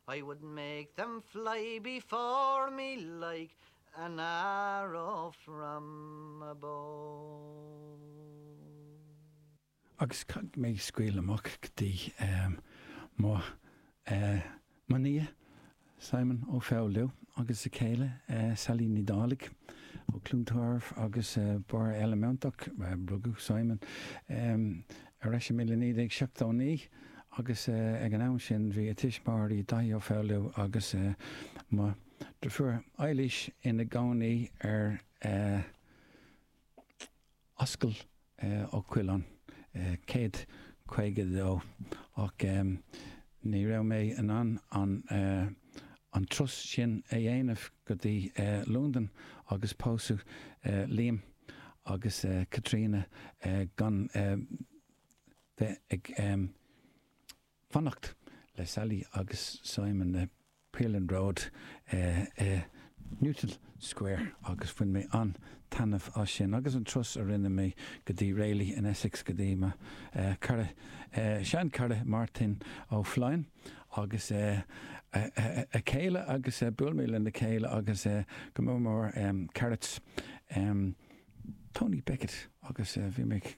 I would make them fly before me like an arrow from a bow. Agus caithfidh mé scairt amach go dtí mo nia Simon Ó Foghlú agus a céile Sally Ní Dhálaigh ó Chluain Tarbh agus Baile Átha Cliath. Rugadh Simon Ar ais i 1979 agus ag an am sin bhí a tuismitheoirí, Daithí Ó Foghlú agus mo dhriofúr Eilís ina gcónaí ar Ascaill Uí Choileáin 152 ach. Ní raibh mé in ann an turas sin a dhéanamh go dtí Londain agus pósadh Liam agus Caitríona gan bheith ag fanacht le Sally agus Simon le Pearlin Road i Newton Square agus bhain mé an-taitneamh as sin agus an turas a rinne mé go dtí Rayleigh in Essex go dtí mo chara, seanchara Martin Ó Floinn agus a chéile agus bhuail mé lena chéile agus go mór mór Carrots Tony Beckett agus bhí mé ag.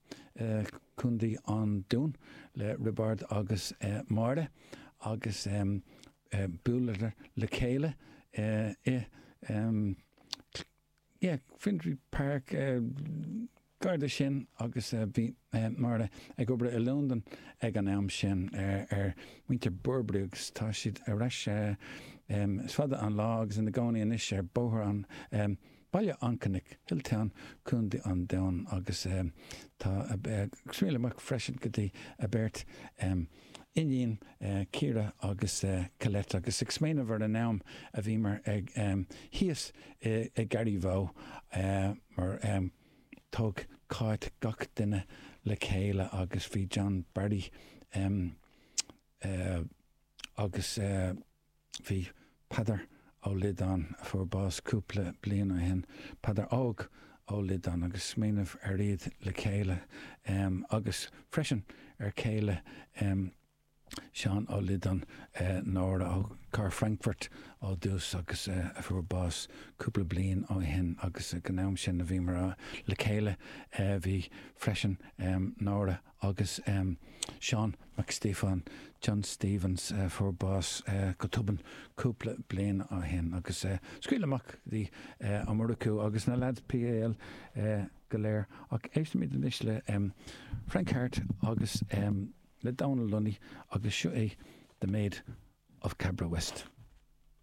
I gContae an Dúin le Roibeárd agus Máire agus bhuaileadar le chéile i bhFinsbury Park gar do sin agus bhí Máire ag obair i Londain ag an am sin ar muintir Burberry agus tá siad ar ais, is fada an lá, agus ina gcónaí anois ar Bhóthar an Baile an Chnoic, Hilltown, Contae an Dúin agus tá scairt amach freisin go dtí a mbeirt iníon, Ciara agus Colette agus ag smaoineamh ar an am a bhíomar thíos i Garryvoe mar thug Cáit gach duine le chéile agus bhí John Barry agus. Bhí Peadar Ó Liodáin, a fuair bás cúpla bliain ó shin, Peadar Óg Ó Liodáin, agus smaoineamh ar iad le chéile, agus freisin ar chéile Seán Ó Liodáin, Nóra ó Frankfurt ó dtús agus a fuair bás cúpla bliain ó shin, agus ag an am sin a bhíomar le chéile bhí freisin Nóra Agus Seán Mac Stíofáin, John Stephens, a fuair bás go tobann cúpla bliain ó shin agus scaoileadh amach go dtí Omaruru agus na leaids PAL go léir. Ach éistimis anois le Frank Harte agus le Donal Lunny agus seo é The Maid of Cabra West.